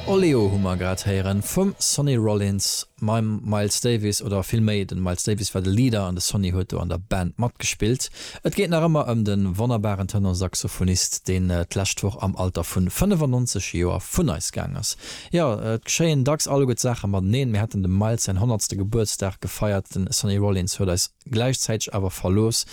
Oleo hu mer grad héieren vum Sonny Rollins mam Miles Davis, oder vill méi den Miles Davis war de Leader an de Sonny huet do an der Band matgespillt. Et geet nach ëmmer ëm den wonnerbaren Tenorsaxophonist deen d'lescht Woch am Alter vun 95 Joer vun eis gaang ass. Jo et geschéien dacks alleguer Saachen mateneen, mir haten dem Miles säin honnertste Gebuertsdag gefeiert, den Sonny Rollins huet eis Gläichzäiteg awer verlooss.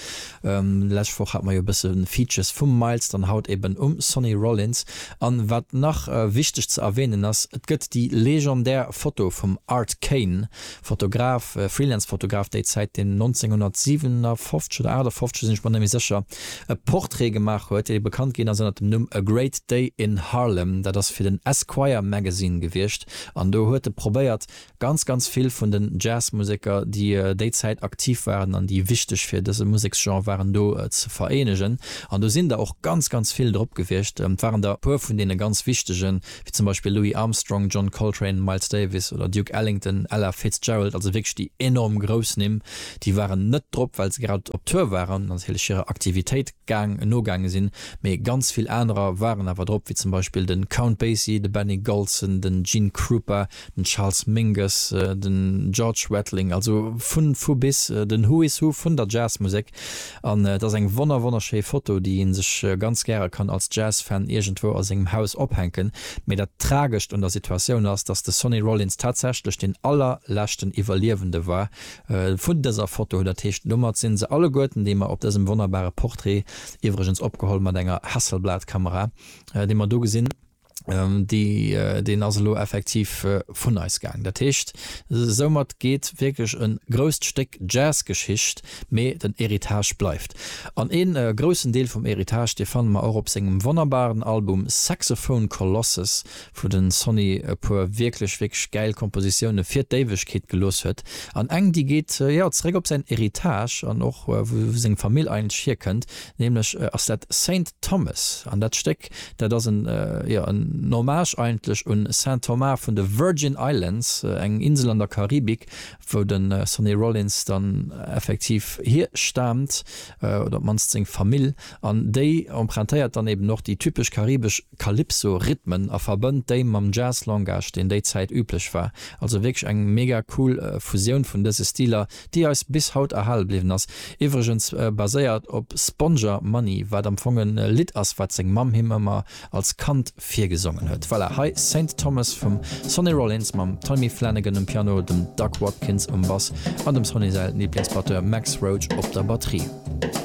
D'lescht Woch hat mer jo e bësse Features vum Miles, dann haut eben um Sonny Rollins. An wat nach wichteg ze erwänen ass, et gëtt déi legendär Foto vum Art Kane, Fotograf, Freelance Fotograf déi Zäit, deen 1957 oder 58, sinn ech mer net méi sécher, e Portrait gemaach huet, dee bekannt ginn ass ënner dem Numm A Great Day in Harlem. Dat ass fir den Esquire Magazine gewiescht an do huet e probéiert Ganz, ganz vill vun den Jazzmuseker, déi déi Zäit aktiv waren an déi wichteg fir dëse Museksgenre waren, do ze vereenegen. An do sinn der och ganz, ganz vill drop gewiescht. Et waren der e puer vun deene ganz wichtegen, wéi zum Beispill Louis Armstrong, John Coltrane, Miles Davis oder Duke Ellington, Ella Fitzgerald, also wierklech déi enorm grouss Nimm. Déi waren net drop, well se grad op Tour waren an natierlech hirer Aktivitéit gaang, nogaange sinn. Mee ganz vill anerer waren awer drop, wéi zum Beispill de Count Basie, de Benny Golson, den Gene Krupa. den Charles Mingus, den George Wettling, also vun vu bis, den Who is Who vun der Jazzmusek, an et ass eng wonner wonner schéi Foto déi een sech ganz gäre kann als Jazzfan iergendwou a sengem Haus ophänken, mee dat tragescht un der Situatioun ass, dass de Sonny Rollins tatsächlech deen allerleschten Iwwerliewende war vun dëser Foto, dat heescht domat sinn se alleguerten déi mer op dësem wonnerbare Portrait, iwwregens opgeholl mat enger Hasselblad Kamera, déi mer do gesinn. deen ass elo effektiv vun eis gaang. Dat heescht, soumat geet wierklech e grousst Stéck Jazzgeschicht, mee den Héritage bleift. An ee groussen Deel vum Héritage, dee fanne mer och op sengem wonnerbaren Album Saxophone Colossus, wou de Sonny e puer wierklech, wierklech gäil Kompositioune fir d'Éiwegkeet gelooss huet. An eng, déi geet, jo, zeréck op säin Héritage an och wou seng Famill eigentlech hierkënnt, nämlech ass dat Saint Thomas. An dat Stéck Dat ass en, jo, en Hommage eigentlech un Saint Thomas vun de Virgin Islands, eng Insel an der Karibik, wou de Sonny Rollins dann effektiv hier staamt, oder op d'mannst seng Famill. An déi empruntéiert dann eben och déi typesch karibesch Calypso-Rhythmen a verbënnt déi mam Jazz-Langage, deen déi Zäit üblech war. Also wierklech eng mega cool Fusioun vun dëse Stiler, déi eis bis haut erhale bliwwen ass, iwwregens baséiert op Sponger Money, wat am Fong e Lidd ass, wat seng Mamm him ëmmer als Kand virgesongen huet. Voilà, hei Saint Thomas vum Sonny Rollins mam Tommy Flanagan um Piano, dem Doug Watkins um Bass an dem Sonny säi Liblingsbatteur Max Roach op der Batterie.